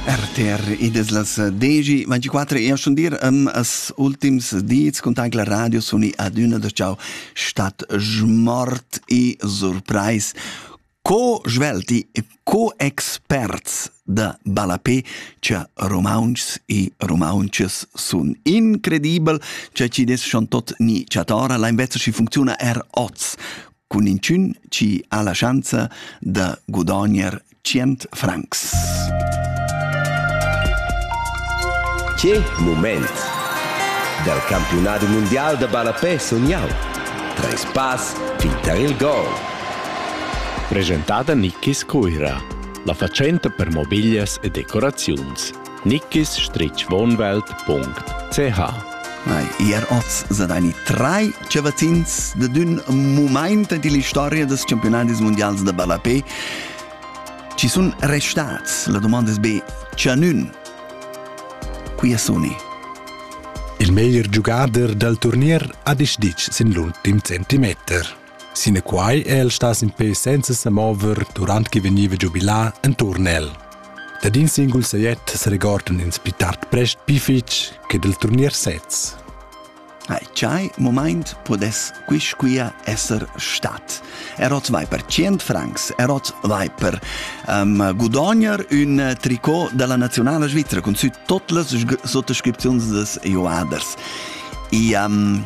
RTR, id es las 10.24 e schon dir am as ultims dis cun tagla radio suni adüna da ciao stat smort e surprais co svelti e co experts da Balapé cha romaunchs e romaunchas sun incredibel cha ci des schon tot ni chatora la invezza chi funcziuna er oz cun inchün chi ha la schanza da gudogner tschient francs. Che moment! Dal campionat mundial da ballapè sun jau. Treis pass fin tar il gol. Presentada Nikis Cuira, la fatschenta per mobiglias e decoraziuns. nickisstrichwohnwelt.ch Ei, ier oz sa deini drei chavazins da dun moment en la storia des campionadis mondials da ballapé. Ci sun restats, la domanda es be, chanun. Qui è suni? Il meglier giugader dal turnier ha disditg sin l'ultim centimeter. Sinaquai è el stas in pe senza sa mover durant che vegniva giubilà enturn el. Dad in singul sajet seregordan ins pli tard prest pli fitg che dal turnier sez. Ai chai moment podes quisquia esser stat. Erot vai per 100 francs, erot vai per um, gudogner un tricot della nazionale svizzera con sü tot las sottoscripzions des joaders. E um,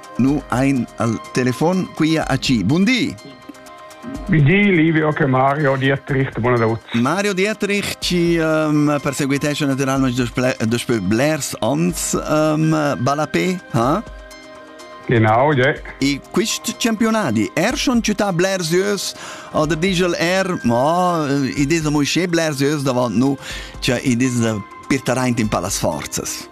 Nu ein al telefon quia a ci. Bundi! Di Livio che Mario Dietrich buonanotte. Mario Dietrich ci um, perseguitesce naturalmente dopo blers ans um, Balapé, ha? Genau, yeah. I quist campionati er schon città blersieus oder digel er ma i dis mo che blersieus davant nu, cioè i dis da pirtareint in palas forzas.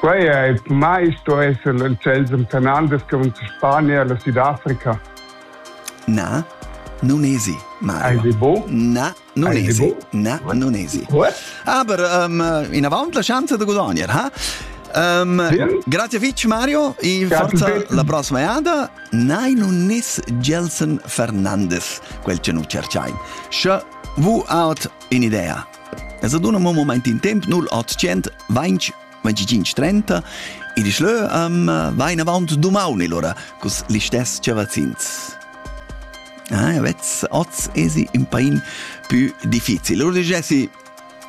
Quei ei per mei sto esser il celsum Fernandes che von Spania alla Sudafrica. Na, nunesi, Mario. Hai di bu? Na, nunesi. Na, nunesi. Aber um, inavant la chance da guadagnar, ha? Um, grazie fitch Mario e forza la prossima jada nei non nis Gelson Fernandes quel che nu cerchain. Sche vu out in idea Es ad un moment in temp 0800 20 25 30 e di schlö um, vain avant dumaun ora cus listess chavazins. Ah, vezz, oz esi un pain più difficil. Ora digessi,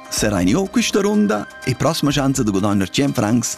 serai io questa ronda e prossima chance de guadagnar 100 francs